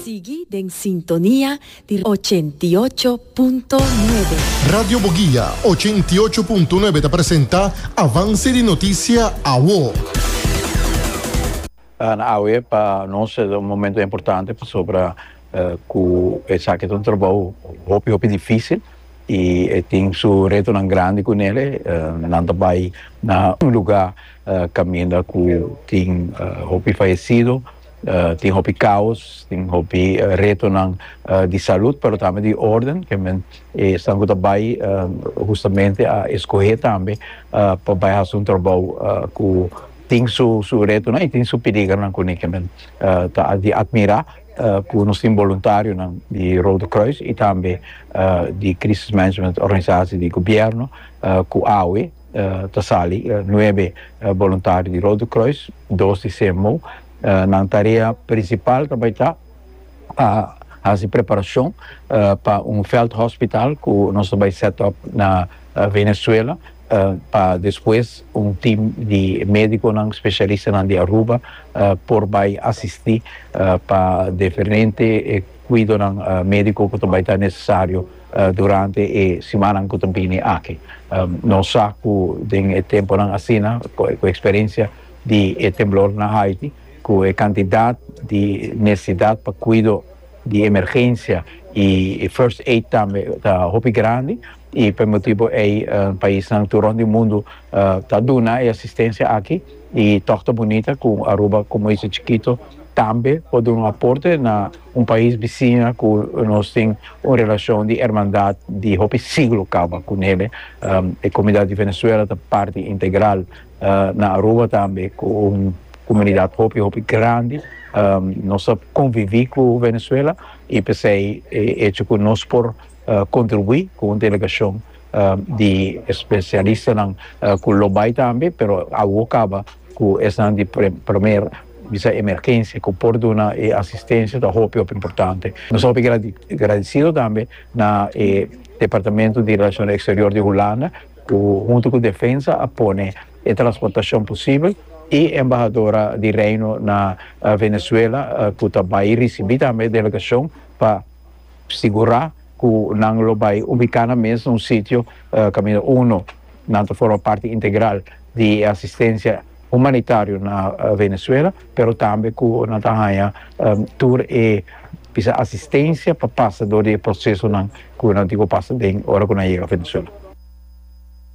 Sigui den sintonia di ochenta i ocho punto nuebe. Radio Boguia ochenta i ocho punto nuebe ta presenta Avance di Noticia Awo. Na awe pa nos ta un momento importante pasobra cu esaki ta un trabou hopi hopi dificil y e tin su retonan grandi cu nele, nan ta bay na un lugar caminda cu tin hopi fayecido, Tin hopi kaos, tin hopi retonan di salud pero tambe di orden, ke men esnan ku ta bai hustamente a eskohé tambe pa bai hasi un trabou ku tin su su retonan i tin su piligernan kuné ke men ta di atmirá ku nos tin boluntarionan di Rode Kruis i tambe di Krisis Management Organisasi di Gobièrnu ku awe. ta sali nuebe boluntario di Rode Kruis, dos di CMO. Nan tarea prinsipal ta bai ta pa hasi preparashon pa un vèldhospitaal ku nos ta bai sèt òp na Venezuela, pa despues un tim di médikonan spesialistanan di Aruba por bai asistí pa diferente kuidonan médiko ku ta bai ta nesesario. Durante e simannan ku ta bini aki nos sa ku den e tempunan asina ku e eksperensia di e temblor na Haiti ku e kantidat di nesesidat pa kuido di emergensia i first aid tambe ta hopi grandi i p'e motibu ei paisnan tur rònt di mundu ta duna e asistensia aki i tòg ta bunita ku Aruba komo isla chikito tambe por duna un aporte na Un pais bisiña cu nos tin un relacion di hermandad di hopi siglo caba cu nele. E comunidad di Venezuela ta parti integral na Aruba tambe cu un comunidad hopi hopi grandi. Nos a convivi cu Venezuela y p'esey e hecho cu nos por contribui cu un delegacion di espesialistanan ku lo bai tambe pero awo kaba ku esnan di primer bisa emergensia ku por duna e asistensia ta hopi hopi importante nos hopi gradisido tambe na e departamento di relashon eksterior di Hulanda ku huntu ku defensa a pone e transportashon posibel i embahadora di Reino na Venezuela ku ta bai risibi tambe e delegashon pa Sigurá ku nan lo bai ubiká na mes un sitio kaminda uno nan ta forma parti integral di e asistensia humanitario na Venezuela, pero tambe ku nan ta haña tur e bisa asistensia pa pasa dor di e prosesonan ku nan tin ku pasa den ora ku nan yega Venezuela.